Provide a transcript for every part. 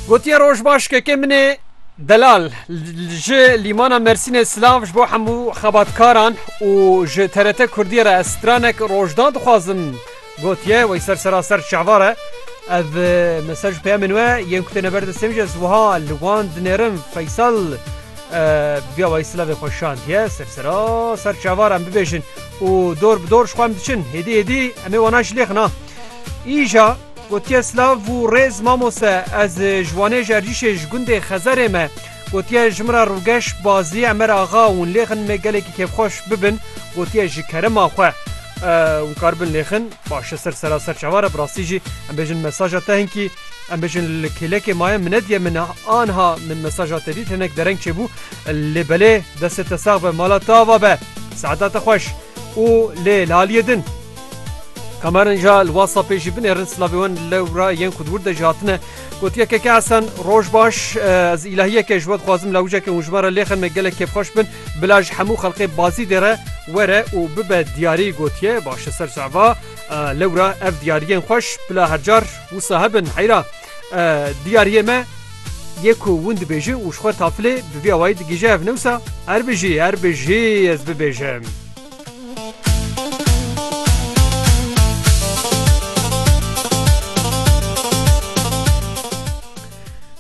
Gotiye roj baş kekê min ê delal ji lîmana Mersînê silav ji bo hemû xebatkaran û ji TRT Kurdiyê re ez stranek rojda dixwazim gotiye wey ser seraser çavar e. Ev mesaj peyamên we yên ku têne ber destê min jî ez wiha li wan dinêrim Feysal biya wey silavê xwe şandiye ser seraser çavar em bibêjin û dor bi dor ji xwe em diçin hêdî hêdî em ê wana jilêxin ha. Îja Gotiye Slav û rêz mamoste ez ji Wanê ji Ercîşê ji gundê Xezerê me. Gotiye ji min re rûgeş Bazî Emer Axa hûn lê xin me gelekî kêfxweş bibin gotiye ji kerema xwe hûn kar bin lê xin baş e ser sera ser çawa re bi rastî jî em bêjin mesaja te hinkî em bêjin li kêlekê maye min nediye min anha min mesaja te dît hinek dereng çêbû lê belê destê te sax be mala te ava be saeta te xweş û lê li aliyê din Kamerin ja li WhatsAppê jî binêrin silavê wan lewra yên ku di wir de jî hatine. Gotiye Keke Esen roj baş ez îlahiyeke ji we dixwazim lawiceke hûn ji me re lêxin me gelek kêfxweş bin bila ji hemû xelqê Bazîdê re were û bibe diyarî gotiye baş e ser cava lewra ev diyariyên xweş bila her car wisa hebin heyra diyariyê me yê ku hûn dibêjin û ji xwe tafilê bi vî awayî digihîje ev newsa her bijî her bijî ez bibêjim.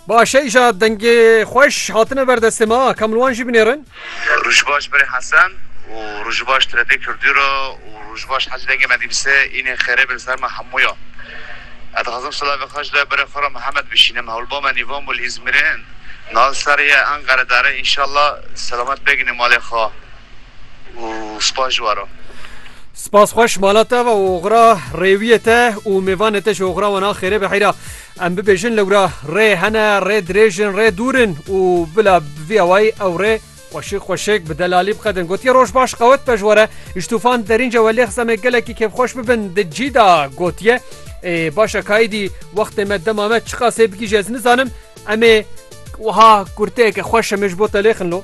Başêja dengê xweş hatine ber destê me a Kamilwan jî binêrin. Rojbaş berê Hesen û Rojbaş tiredê Kurdî ra û Rojbaş hecî dengê me dîbise înê xêrê bi li ser me hemû ya. Ez dixwazim silavê xwe ji lê berê xwe ra Mihemed bişînim hewlba me nîvan bû li Îzmîrê niha li ser ye Enqeredar e înşallah selamet bêginê malê xwe. û spas ji we re. Spas xweş mala te ve û oxira rêwiyê te û mêvanê te ji oxira wan a xêrê be heyra. Em bibêjin lewra rê hene, rê dirêj in, rê dûr in û bila bi vî awayî ew rê xweşik xweşik bi delalî biqedin. Gotiye roj baş qewet be ji we re. Ji tûfan derîn ce we lêxis em ê gelekî kêfxweş bibin. Di cî de gotiye, Ê baş e kaîdî wextê me dema me çi qaseyê bigihîje ez nizanim. Em ê wiha kurteyeke xweş em ê ji bo te lêxin lo.